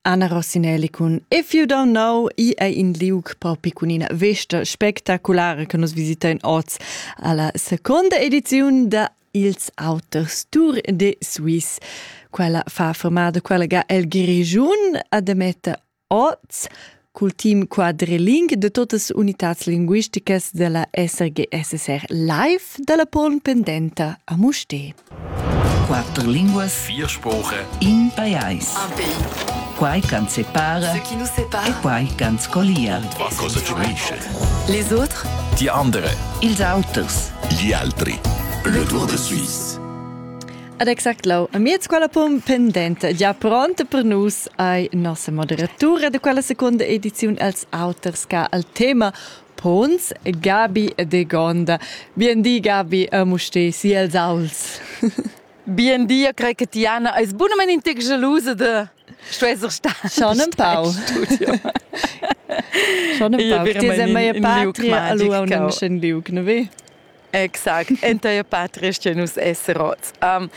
Anna Rossinelli cun If You Don't Know i è in liug propi cun ina vesta spectaculare che nus visitein oz alla seconda edizione da Ils Auters Tour de Suisse. Quella fa formada quella ga el Grigiun a Demetta Oz cul team quadriling de totas unitats linguisticas della SRGSSR live dalla poln pendenta a Musté. Quatter linguas, vier spoche, in pajais. Un pays. Quai can separa, ce qui nous sépare, e quai can scollia. Qua cosa ci unisce? Les autres, die andere, ils auters, gli altri. Le Tour de Suisse. Ad exact lau amiez quella pum pendenta gia pronta per nus ei nossa moderatura de quella seconda ediziun els auters ca al tema Pons Gabi de Gonda. Bien di Gabi, amo ste si els auls. Bien di, io crei che Tiana eis bunament intig gelusa de sto esser sta. Schon ein pau. Schon ein pau. Ti sei mei patria, allo un liug, ne ve? Exact, entair patris che nus esser oz. Um,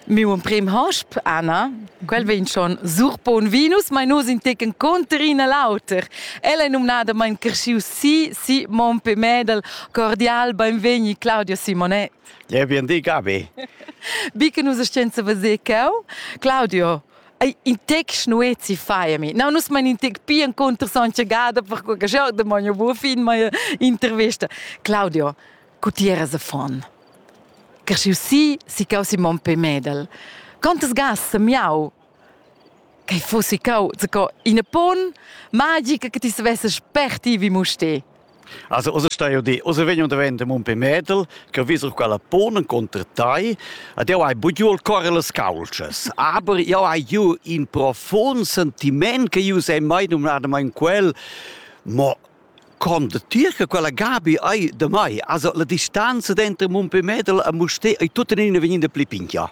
miu emprim hosp, Anna, quel vegn schon surpon vinus, ma nus in tecen conter ina l'auter. Ella è nominada mein cresciu si, si mon pe medal, cordial, benvegni Claudio Simonet. Ja, bien di, Gabi. Bi che nus scienza veser cau. Claudio, Ei in tec schnuezi faiami. No, nus mein in tec pia encunter sontga Gada, perque che jeu damogn buca fin mia intervista. Claudio, cu ti eras a fon? Cresciu si, si cau si mon pe medel. Quantas gas semiau che fossi cau, co ina pon magica che ti savesses sperti vi mustè. Also, also stai io dir, also vegno davent un pe medel, che visel quella pon contr tai, ad io hai bugiu il core las calcias, aber io hai giu in profond sentiment che io sei mai numnadamain quel, mo con de tier che quella Gabi hai de mai, also la distanza dentro un pe medel a Musté ei tutta in vegnind pli pinchia.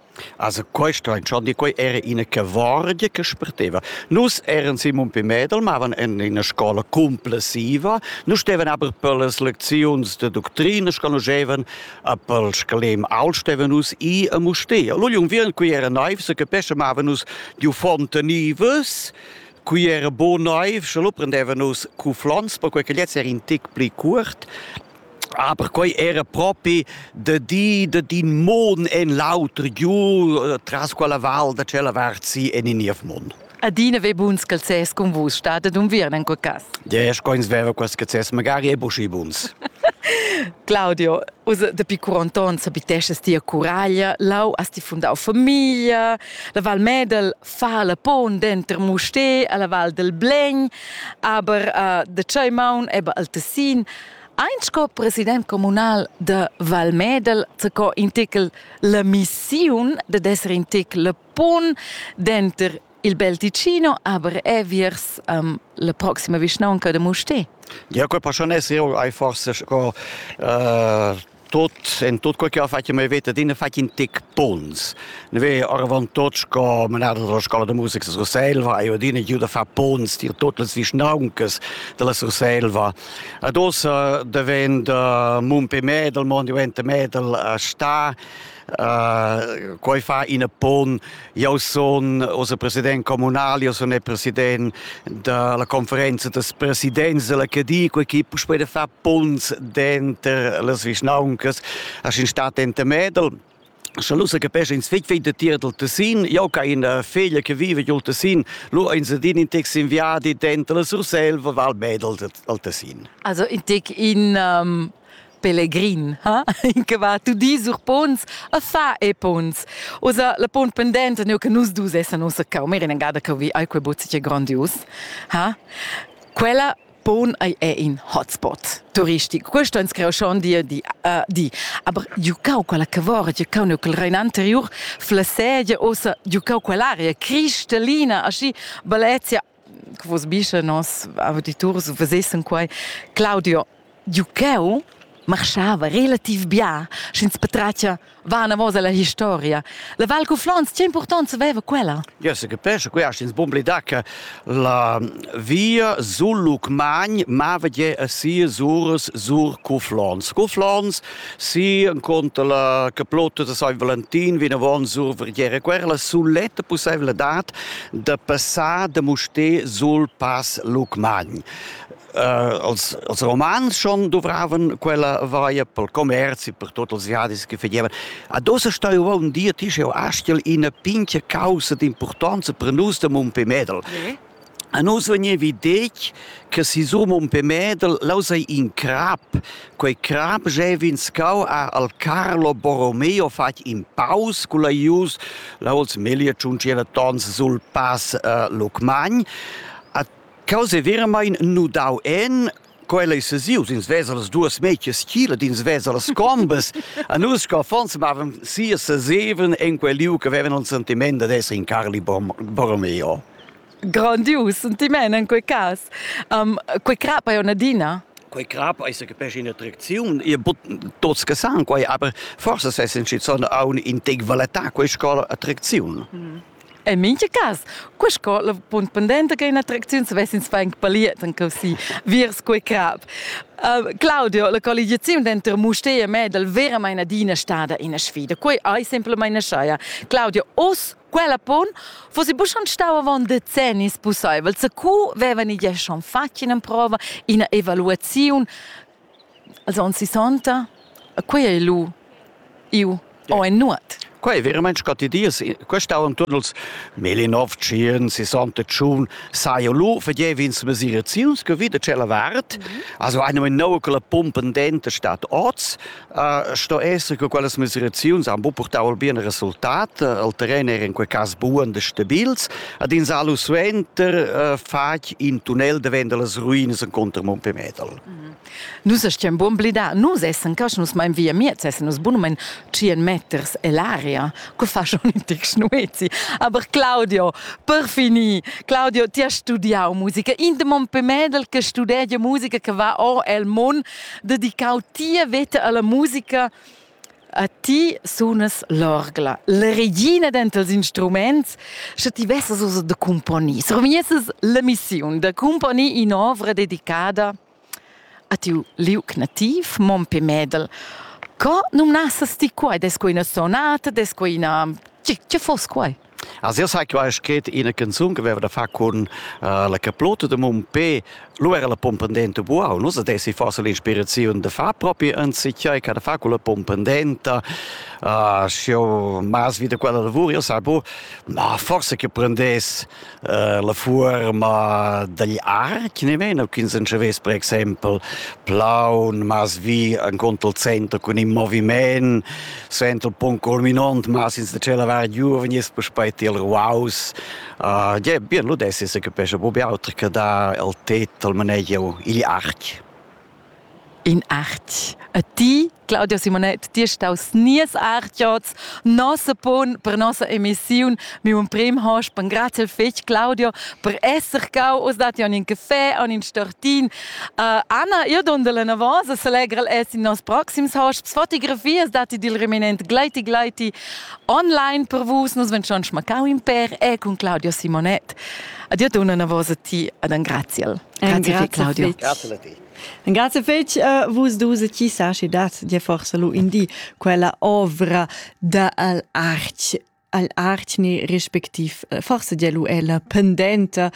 Also questo in schon di quei era ina cavorgia che spreteva. Nus eran Simon Pimedel, mavan in ina scola complessiva, nus stevan aber per las lecziuns de doctrina, sconoschevan a pel scalem al stevan nus i a mustea. Lugli un virn qui era naiv, se capesce mavan nus di fontanivas, qui era bon naiv, sche lu prendeva nus cu flons, perquei che lez era in tic pli cuort, Aber quei era propi da di da din mon en l'auter giu tras quella val da tschella vart si en in niev mond. Adina ve buns calzès con vus stada d'unviern en quel cas. Ja, ich coins veva quels calzès magari è buschi buns. Claudio, usa dapi curonton sabitesces tia curaglia, lau has ti fundau famiglia, la Val Medel fa la pon denter Musté alla Val del Blegn, aber uh, de tschei maun eba al Tessin, Ein sco president communal da Val Medel zaco in tical la missiun dad esser in tical pon denter il bel Ticino aber eviers um, la proxima vischnaunca de Mustè. Ja, quel passion esser ei forse sco uh, tot en tot quel che ho fatg mei veta din fatg in tec pons ne ve oravant tot sco menada dalla scola da musica da Surselva e odin giu da far pons dir tot las vischnauncas dalla Surselva ad ossa devend mun pe medal mon diventa medal sta Uh, quei fa in pon. Io sun ossa president comunal, io sun il president della conferenza des presidents che di quei chi puspei de far punts denter las vischnauncas a in stat ente Medel Schon lusa che pesce ins fig fig de tier del Tessin, io ca in figlia che vive giù Tessin, lu ins din in tex inviadi dentro la Sursel, val medel al Tessin. Also in tec in um, Pellegrin, ha? che va tu di sur pons a fa e pons. Osa la pont pendente neu che nus dus essan ossa cau meren engada che vi ai quei bozzi che grandius, ha? Quella pon ei è in hotspot turistico. Questo ins creo schon di di uh, di. Aber giucau quella cavora, giucau neu quel rein anterior, fla sedia ossa giucau quell'aria cristalina aschi Valencia che vos bischa nos auditurs vesessen quai Claudio Giucheu marschava relativ bia sch'ins patratgia vanavos alla historia. La Val Cuflons, che impurtant veva quella? Ja se capesce, quest ins bomblida che la via sul Lucmagn mava je a sia suras sur Cuflons. Cuflons Sì, enconter la caplotta da San Valentin vinavon survriere quella suletta possibilitad da passar da Mustè sul Pass Lucmagn. Uh, als, als Romans schon dovraven quella vaia pel commerz e per tot els jadis che fagevan. A dosa staiva un dia ti scheu astel ina pincha causa d'importanza per nus da Mumpé Medel. Yeah. A nus vegnevi detg che sisum un pe medel laus ei in crap. Quei crap jeva in scau a al Carlo Borromeo fatg in paus cul aius, là els meglier tschunciera tons sul pass uh, Lucmagn. A causa veramein nudau en Quella ei sesius, ins vesa las duas metias chila, ins vesa las combas. A nus co affons mavan sia seseven en quel liu che vevan un sentiment ad esser in Carli Borromeo. Grandius sentiment in quei cas. Um, quei crap ei un'adina. Quei crap ei se capisce in attraziun, e tots che san quei, aber forse se sensci son aun in tec valetà quei scola attraziun. Mm. En mintga cas, qua sco la punt pendenta che un'attracziun svessins fang paliet en così, viers quei crap. Uh, Claudio, la colligiaziun denter Mustér e Medel veramente adina stada ina sfida. Quei ei semplamain schaia. Claudio, oz quella pon fossi bu schon stau avon decennis pusseivel. Se cu vevan igl schon fatg ina prova, ina evaluaziun Els on sissonta? E quei ei lu iu o ei nuot? Quei ei veramein scotti dies. Questa on tut els Melinov, Tschirn, sissanta tschun, sai lu fagev'ins mesiraziuns che vita tschella vart. Also eine genau che la pumpa pendente stat oz. Uh, sto esser che quelle mesiraziuns han bu portau al bien resultat. Il terren era in quei cas buon e stabils. Ad ins alu suenter uh, fac in tunnel davent dallas ruinas en contro Mompemedal. Nus stiam buon blidar, nus essan casch, nus mein via miez, essan nus bunumein 100 meters ell'aria, co fa schon in tec schnuezi. Aber Claudio, per finir, Claudio, ti has studiau musica, in de mon pemedel che studegia musica che va o el mon, dedicau tia veta alla musica, A ti sunas l'orgla, la regina dentals instruments, sche ti vesas ussa da cumponir, surmiesses la missiun da cumponir in'ovra dedicada a tiu liuc nativ, Mompe Medel. Co numnassas ti quai? Des quei ina sonata? Des quei ina... Tgi, tgi foss quai? As io sai qua scrit ina canzun che aveva da far con uh, la caplota de mon pe, lo era la pompendenta buau. Nus adessi forse l'inspirazione de far proprio anziché che da far con la pompendenta. Uh, sio mas vita quella lavora, io sai bu, ma forse che prendess uh, la forma degli archi, ne meno, quins en c'avess per exempel plaun, mas vi en conto il centro con in moviment, sento pon corminont, ma sin da cela var giuvenist puspei til ruaus. Uh, je, bien lu desse se capesce bu auter che da el tet al manegio igl arch. In arch. A ti, Claudio Simonet, ti staus nies archiots, nossa pon per nossa emissiun. Mi un prim hosch, ben grazie fetg, Claudio, per esser cau, us dati on in caffè, on in stortin, Uh, Anna, io dondel enavos e selegrel es in nos proxims hosts fotografias dati dil reminent Gleiti Gleiti online per vus. Nus ven schon schmacau in per e con Claudio Simonet. Adio dona enavos a ti ad an graziel. Grazie, grazie Claudio. Grazie a ti. Grazie fetch uh, vus dus ci sa ci dat di forse lu indi quella ovra da al arch al artgni respectiv eh, forse dia lu ella pendenta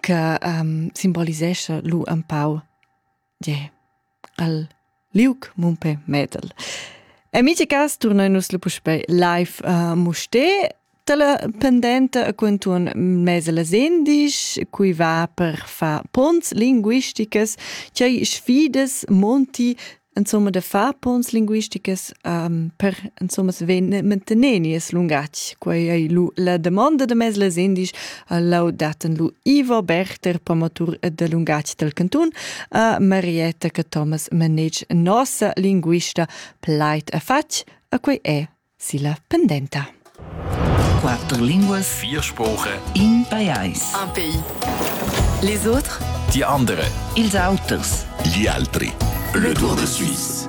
che um, simbolisescha lu un pau yeah, al liuc mumpe metal. Amici cas, turnoin nus lu puspei live uh, muste tala pendenta a quantun mese las endisch, cui va per fa pons linguisticas, chai sfidas monti insomma da far pons linguisticas um, per insomma vegnir manteneni es lungatg quei ei lu la domanda de mes les indisch lau daten lu Ivo Berter promotur de lungatg del cantun a Marietta che Thomas manage nossa linguista pleit a fatg a quei è silla pendenta. Quatter linguas, vier Sprache, in pajais, un pays. Les autres, die andere, ils auters, gli altri. Le Tour de Suisse.